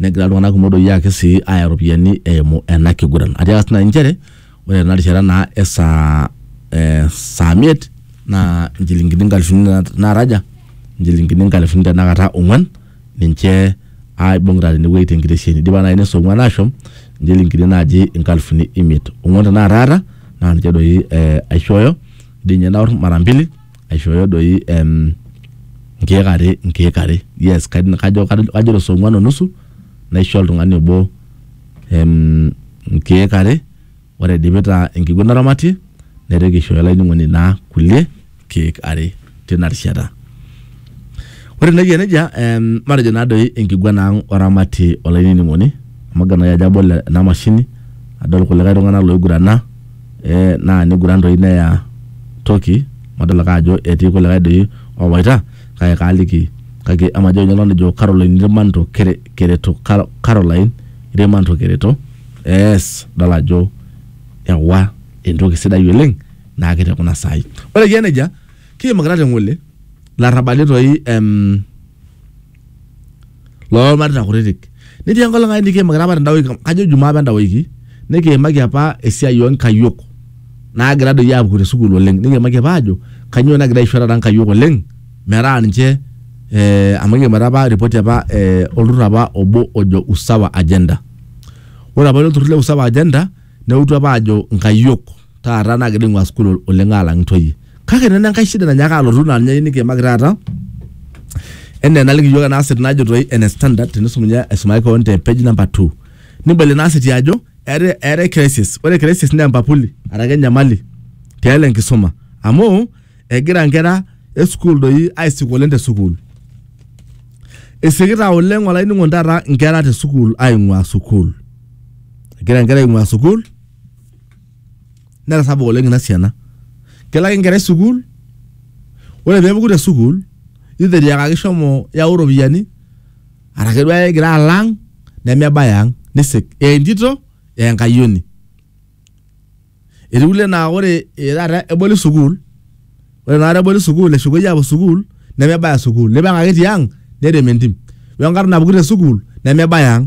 negira iltung'anak kumok doi ake sii aaya iropiyiani eimu ena kiguran atiaka sii naaji inchere ore tena rishata naa e saa eh, saa miet naa inchilingini inkalifuni na- naataja inchilingini inkalifuni tenakata ong'uan ninche aibung'ita tenewueji tenkitesheni idipa naaji neso ong'uan ashom inchilingini naaji inkalifuni imiet ong'uan tenakata aata naa ninche doi eh, aishooyo dii ninye naorr mara mbili aishooyo doi em, nkeek are nkeek are yes kajo kajo kajo to saa ong'uan o nusu naisho oltung'ani obo em, nkeek are ore aidipita enkiguana naramatie naitoki aishooyo olainining'oni naa kulie keek are tina rishata ore naa eyia nejia em, matejo naa doi enkiguana ang oramatie olainining'oni amu agil naaji ajo abol ena mashini adol kulikae tung'anak loigurana eh, naa niguran doi neya toki madol ake ajo etii kulikae doi owaita kake kaaliki kake emajo ninye nejo Caroline Irmanto kere, kereto Car- Caroline Irmanto kereto yes dol ajo ewa entoki sidai oleng naake te kuna saai ore kiya nejia kiimakita te ng'ole larrabali toi em, loolmareita kutitik. Netii enkolong ai nikiimakita apa tenda wiki, kajo ijumaa apa enda wiki, nikiimaki apa esiai oo nkayiok naagira doi aapuku te sukuul oleng. Nikiimaki apa aajo kanyoo nagira aisho taata nkayiok oleng metaa ninche eh amu kiimita apa ripoti apa eh olturrur apa obo ojo Usawa Agenda. Ore apa ilo turrur le Usawa Agenda neutu apa ajo nkayiok taata nagira ing'ua sukuul oleng alang intoyie kake nena enkae shida nanyaaka alotu naa ninye nikiimaki taata enaa enaliki iyiok ena asset najo toi ene standard tenisum ninye aisumaki kewon te page number two nibol ina asset ajo eetae eetae crisis ore crisis naa empapuli araki enyamali tialo enkisuma amu egira inkera e sukuul doi aisik oleng te sukuul isikita oleng olainining'oni taata inkera te sukuul aing'ua sukuul egira inkera aing'ua sukuul netasapuk oleng ina siana kelo ake enkerai sukuul ore peepuku te sukuul either etiakaki shomo yau iropiyiani arake duo ake egira alo ang nemebaya ang nisik ee entito ee enkayioni etii kulie naa ore ee taata eboli sukuul ore inakata eboli sukuul eshukuei apuo sukuul nemebaya sukuul nipang ake tiang nerem entim wenkarna napuku te sukuul nemebaya ang.